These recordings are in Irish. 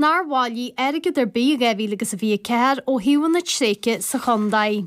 nár bhailigh airgead ar bith i 2024 ó shuíomhanna tréigthe sa chontae.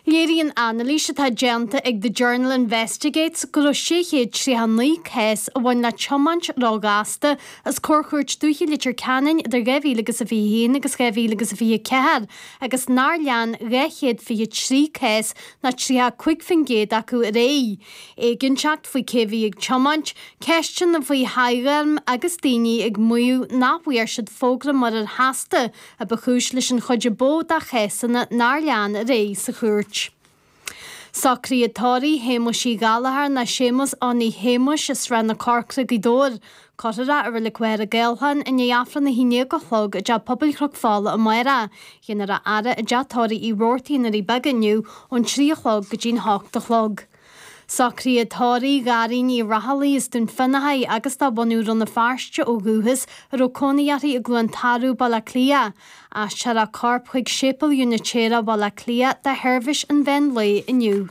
Léiríonn anailís atá déanta ag The Journal Investigates go raibh 639 cás a bhain le tiomáint ró-ghasta os comhair Chúirt Dúiche Leitir Ceanainn idir 2021 agus 2024 agus nár lean 223 cás, nó 35% acu, ar aghaidh. Éiginnteacht faoi cé bhí ag tiomáint, ceisteanna faoi thoghairm agus daoine ag maíomh nach bhfuair siad fógra muirir sheasta a ba chúis leis an chuid ab mhó de chásanna nár lean ar aghaidh sa chúirt. Socruithe tórraimh Shéamuis Uí Ghallchóir nó Séamus Johnny Shéamuis as Srath na Corcra Gaoth Dobhair Cuirfear i Reilig Mhachaire Gathlán é i ndiaidh Aifreann a haon déag a chlog i dTeach Pobail Chnoc Fola amárach. Déanfar a fhaire i dTeach Tórraimh Uí Robhartaigh ar na Doirí Beaga inniu ón trí a chlog go dtí'n hocht a chlog. Socruithe tórraimh Dhairín Uí Rathallaigh as Dún Fionnachaidh agus de bhunadh Rann na Feirste ó dhúchas a raibh cónaí uirthi i gCluain Tarbh, Baile Átha Cliath. Aistreofar a corp chuig Séipéal Úinitéireach Bhaile Átha Cliath do sheirbhís an mheán lae inniu.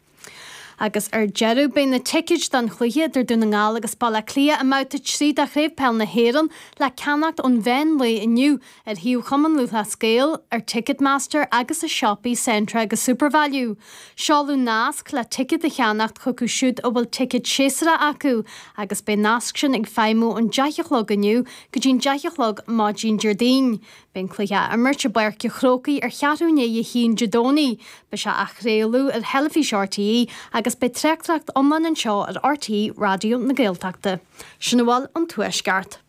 Agus ar deireadh, beidh na ticéid don chluiche idir Dún na nGall agus Baile Átha Cliath i mbabhta 3 de Chraobh Peil na hÉireann le ceannacht ón mheán lae inniu ar shuíomh Chumann Lúthchleas Gael, ar Ticketmaster agus i siopaí Centra agus Supervalu. Seoladh nasc le ticéad a cheannacht chucu siúd a bhfuil ticéad séasúra acu agus beidh an nasc sin ag feidhmiú ón deich a chlog inniu go dtí'n deich a chlog maidin Déardaoin, Beidh an cluiche á imirt i bPáirc a' Chrócaigh ar cheathrú i ndiaidh a haon Dé Domhnaigh. Beidh sé á chraoladh ar theilifís RTÉ agus beidh tráchtaireacht iomlán anseo ar RTÉ Raidió na Gaeltachta. Sin a bhfuil ón Tuaisceart.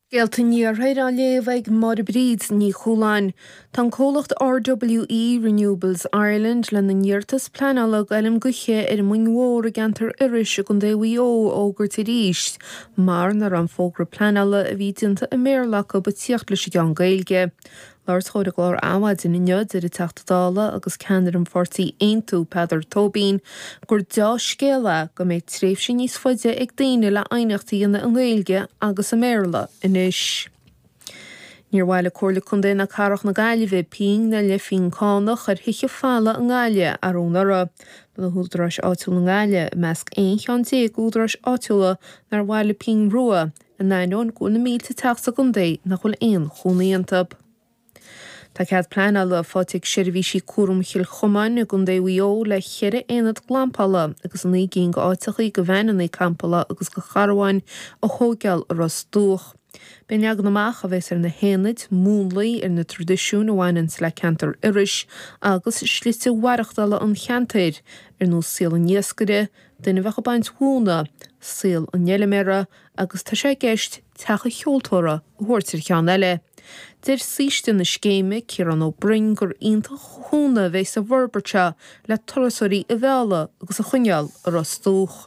Scéalta an Iarthair á léamh ag Máire Bríd Ní Chualáin. Tá an comhlacht RWE Renewables Ireland lena n-iarratas pleanála d'fheilm gaoithe ar an Muing Mhór i gceantar Iorrais i gContae Mhaigh Eo a fhógairt arís Mar ná raibh an fógra pleanála a bhí déanta i mBéarla acub ag tíocht leis an gceann Gaeilge. Ag labhairt dhó ar an gclár Adhmhaidin inniu, deir an Teachta Dála agus ceannaire an pháirtí Aontú, Peadar Tóibín, gur dea-scéala é go mbeidh tréimhse níos faide ag daoine le aighneacht a dhéanamh i nGaeilge agus i mBéarla anois. Níor bhailigh Comhairle Contae ná Cathrach na Gaillimhe pingin ná leathphingin cánach ar thithe folmha i nGaillimh arú anuraidh. Bhí na húdaráis áitiúla i nGaillimh i measc aon cheann déag d'údaráis áitiúla nár bhailigh pingin rua, in ainneoin go bhfuil na mílte teach sa gcontae nach bhfuil aon chónaí iontu. Tá cead pleanála faighte ag Seirbhísí Cúram Chill Chomáin i gContae Mhaigh Eo le cheithre aonad glampála agus naoi gcinn go áiteachaí go veaineanna campála agus go carabháin a thóigeáil i Ros Dumhach. Beidh an leagan amach a bheas ar na haonaid múnlaithe ar na traidisiúin a bhaineanns le ceantar Iorrais agus slite mhaireachtála an cheantair, ar nós saol an iascaire, duine a bheadh ag baint mhóna, saol an fheiliméara agus tá sé i gceist teach an cheoltóra a thabhairt ar cheann eile. Deir saoiste na scéime, Ciarán Ó Broin, gur iontach an cúnamh a bheidh sa bhforbairt seo le turasóirí a mhealladh agus a choinneáil i Ros Dumhach.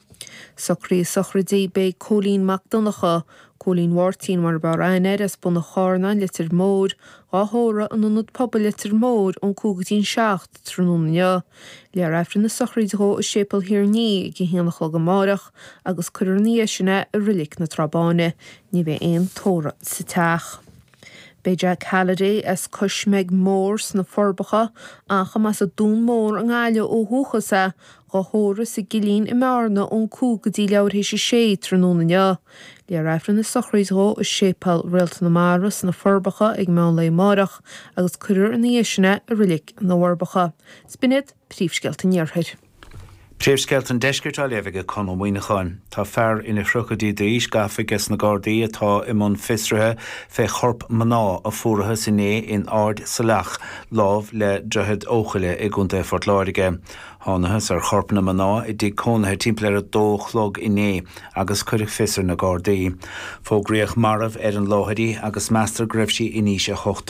Socruithe sochraidí, beidh Cóilín Mac Donncha, Cóilín Mháirtín mar ab fhearr aithne air, as Bun an Charnáin, Leitir Móir, dhá thórramh in Ionad Pobail Leitir Móir, ón 5 go dtí an 7 tráthnóna inniu. Léifear Aifreann na sochraide dhó i Séipéal Thír an Fhia ag a haon a chlog amáireach agus cuirfear ina dhiaidh sin é i Roilic na Trá Báine. Ní bheidh aon tórramh sa teach. Beidh Jack Halliday as Cois Meig Mór sna Forbacha, ach a mb'as an Dún Mór i nGaillimh ó dhúchas é, dhá thórramh sa gCillín i mBearna ón 5 go dtí leathuair théis a 6 tráthnóna inniu. Léifear Aifreann na sochraide dhó i Séipéal Réalta na Mara sna Forbacha ag meán lae amáireach agus cuirfear ina dhiaidh sin é i Roilic na bhForbacha. Is b'in iad. Príomhscéalta an Iarthair. Príomhscéalta an Deiscirt á léamh aige Conn Ó Muíneacháin. Tá fear ina thríochaidí d'aois gafa aiges na Gardaí atá i mbun fiosraithe fé chorp mná a fuarathas inné in Ard Saileach lámh le Droichead Eochaille i gContae Phort Láirge. Thánathas ar chorp na mná i dtigh cónaithe timpeall ar a dó a chlog inné agus cuireadh fios ar na Gardaí. Fógraíodh marbh ar an láthair í agus meastar go raibh sí in aois a hocht